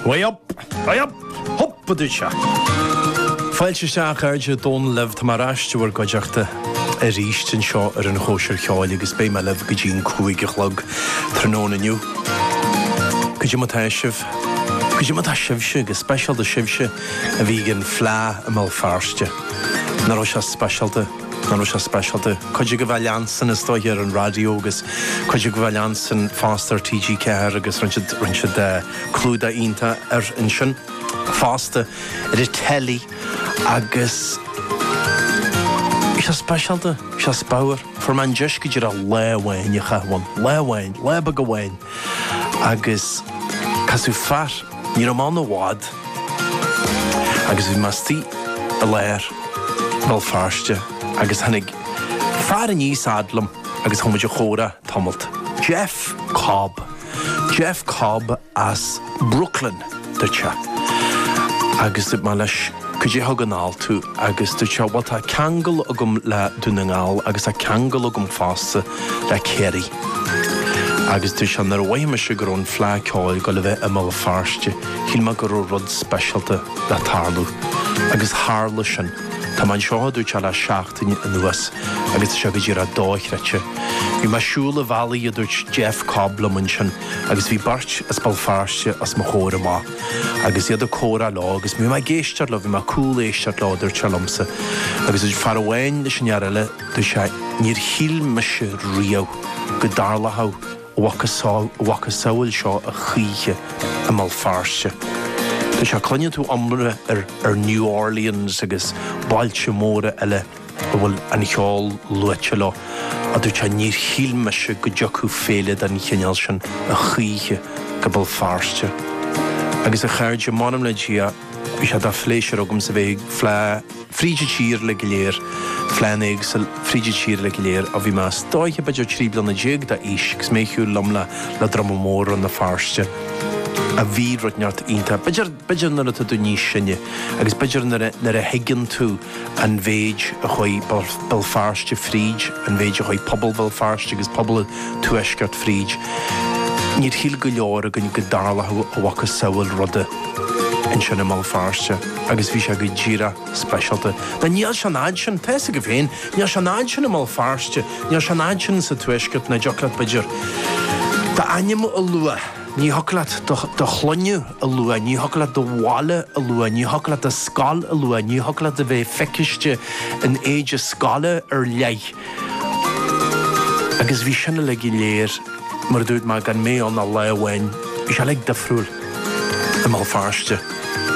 Way up! Way up! Hup a duit a! Fáilte isteach a chairde Dónal libh, tá mé ar ais in bhur gcuideachta arís anseo ar an Chóisir Cheoil agus beidh mé libh go dtí an cúig a chlog tráthnóna inniu. Cad é mar atá sibh, cad é mar atá sibhse agus speisialta sibhse a bhí ag an Fleadh i mBéal Feirste. Nach raibh sé speisialta? Nach raibh sé speisialta. Cuid agaibh á leanstan is dóiche ar an raidió agus cuid agaibh á leanstan fosta ar TG4 agus rinn siad rinn siad clúdach iontach air ansin fosta ar an telly agus Bhí sé speisialta, bhí sé spadhar. Fuair mé an deis go díreach lá amháin a chaitheamh ann. Lá amháin, lá beag amháin agus casadh fear. Ní raibh mé ann i bhfad agus bhí mé istigh i lár Bhéal Feirste agus tháinig fear aníos fhad liom agus chuaigh muid a chomhrá tamalt. Geoff Cobb. Geoff Cobb as Brooklyn dúirt sé. Agus dúirt mé leis cad é a thug anall tú agus dúirt sé bhuel tá ceangal agam le Dún na nGall agus tá ceangal agam fosta le Kerry. Agus dúirt sé nuair a mhothaigh mise go raibh an Fleadh Ceoil ag gabháil a bheith i mBéal Feirste, shíl mé go raibh rud speisialta le tarlú. Agus tharla sin. Tá mé anseo, a dúirt sé, le seachtain anuas agus tá sé go díreach dóchreidte. Bhí mé ag siúl an bhealaigh, a dúirt Geoff Cobb liom ansin, agus bhí beirt as Béal Feirste os mo chomhair amach agus iad ag comhrá leo agus bhí mé ag éisteacht leo, bhí mé ag cúléisteacht leo, a dúirt sé liomsa. Agus a dúirt fear amháin leis an fhear eile, Dúirt sé, Níor shíl mise riamh go dtarlódh a mhacasamhail seo a choíche i mBéal Feirste. Dúirt sé, Cluineann tú iomrá ar ar New Orleans agus bailte móra eile a bhfuil an cheol luaite leo, a dúirt sé, níor shíl mise go dtiocfadh féile den chineál sin a choíche go Béal Feirste. Agus a chairde, m'anam le Dia, bhí sé de phléisiúr agamsa bheith ag fríd an tír uilig go léir, fleánna éagsúil fríd an tír uilig go léir ó bhí mé is dóiche b'fhéidir trí bliana déag d'aois agus mé ag siúl liom le le druma mór Rann na Feirste ach bhí rud inteacht iontach b'fhéidir, b'fhéidir nuair atá tú níos sine agus b'fhéidir nuair a, nuair a thuigeann tú an mhéid a chuaigh Béal Feirste fríd, an mhéid a chuaigh pobal Bhéal Feirste agus pobal an Tuaisceart fríd, níor shíl go leor againn go dtarlódh a mhacasamhail ruda. ansin i mBéal Feirste agus bhí sé go díreach speisialta. Now níl sé an fhad sin, tá fhios agaibh féin, níl sé an fhad sin i mBéal Feirste, níl sé an fhad sin sa Tuaisceart, nach dtiocfadh leat b'fhéidir d'ainm a lua, ní thiocfadh leat do shloinne a lua, ní thiocfadh leat do bhaile a lua, ní thiocfadh leat do scoil a lua, ní thiocfadh leat a bheith feiceáilte in éide scoile ar leith. Agus bhí sin uilig go léir, mar a dúirt mé, gan mé ann ach lá amháin. Bhí sé uilig difriúil i mBéal Feirste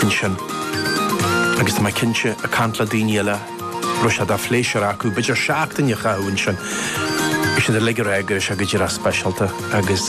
ansin. Agus tá mé cinnte, ag caint le daoine eile, go raibh sé de phléisiúr acu b'fhéidir seachtain a chaitheamh ansin. Bhí siad uilig ag rá go raibh sé go díreach speisialta agus.